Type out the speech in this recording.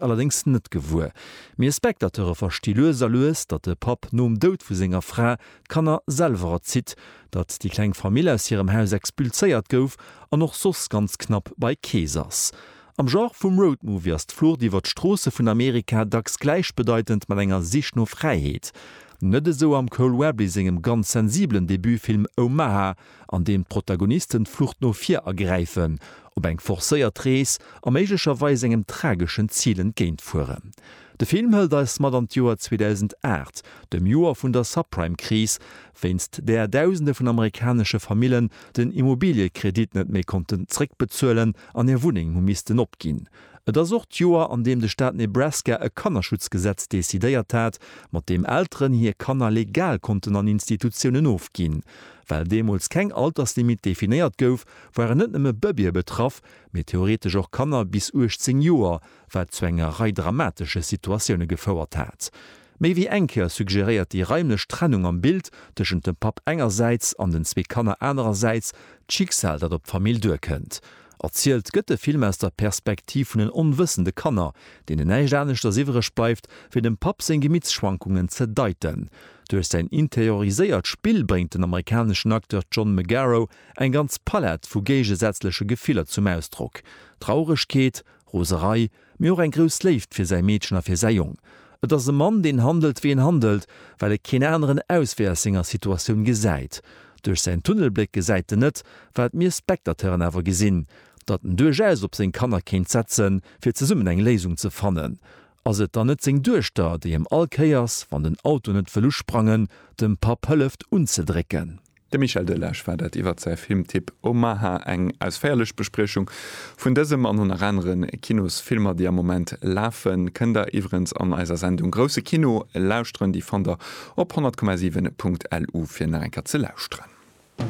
allerdéngs net gewuer. Mir Spectateure versti lues a lues, datt de Papp nom Doud vu senger Fra d'Kanner selwer erzitt, datt déi kleng Famill aus hirem Haus expulséiert gouf an och soss ganz knapp bei Kees ass. Am Genre vum Road Movie ass d'Flucht iwwer d'Stroosse vun Amerika dacks gläichbedeitend mat enger Sich no Fräiheet. Net esou am Cole Webley sengem ganz sensibelen Debutfilm Omaha, an deem d'Protagonisten d'Flucht no vir ergräifen, op eng forcéiert Rees a méiglecherweis engem trageschen Zil entgéint fueren. De Film hëlt eis mat an d'Joer 2008, dem Joer vun der Subprime-Kris, wéinst där Dausende vun amerikanesche Famillen den Immobiliëkredit net méi konnten zréckbezuelen an hir Wunneng hu missten opginn. Et ass och d'Joer, an deem de Staat Nebraska e Kannerschutzgesetz decidéiert hat, mat deem Elteren hir Kanner legal konnten an Institutiounen ofginn. Well deemools keng Alterslimit definéiert gouf, waren net nëmme Bëbeeë betraff, mee theoretesch och Kanner bis 18 Joer, wat zu enger Rei dramatesche Situatioune gefouert hat. Méi wéi eng Kéier suggéréiert déi raimlech Trennung am Bild tëschent dem Papp engersäits an den zwee Kanner anerersäits d'Schicksal, dat op d'Famill duerkënnt. Erzielt gëtt de Film aus der Perspektiv vun den onwëssende Kanner, deenen näischt aneschters iwwereg bleift, wéi dem Papp seng Gemittschwankungen ze deiten. Duerch säin interioriséiert Spill bréngt den amerikaneschen Acteur John Magaro eng ganz Palett vu géigesätzleche Gefiller zum Ausdrock, Trauregkeet, Roserei, mee och eng grouss Léift fir säi Meedchen a fir säi Jong. Et ass e Mann, deen handelt, wéi en handelt, well e keen aneren Auswee aus senger Situatioun gesäit. Duerch säin Tunnelbléck gesäit en net, wat mir Spectateuren awer gesinn, datt en duerchaus op seng Kanner kéint setzen, fir zesummen eng Léisung ze fannen. Ass et dann net seng Duechter, déi em all Kéiers, wann den Auto net wëll usprangen, dem Papp hëlleft unzedrécken? De Michel Delage war dat iwwert säi Filmtipp Omaha, eng ausféierlech Bespriechung vun dësem an ënner anere Kinosfilmer, déi am Moment lafen, kënnt der iwwerens an eiser Sendung Grousse Kino lauschteren. Déi fannt der op 100,7.lu fir nach eng Kéier ze lauschteren.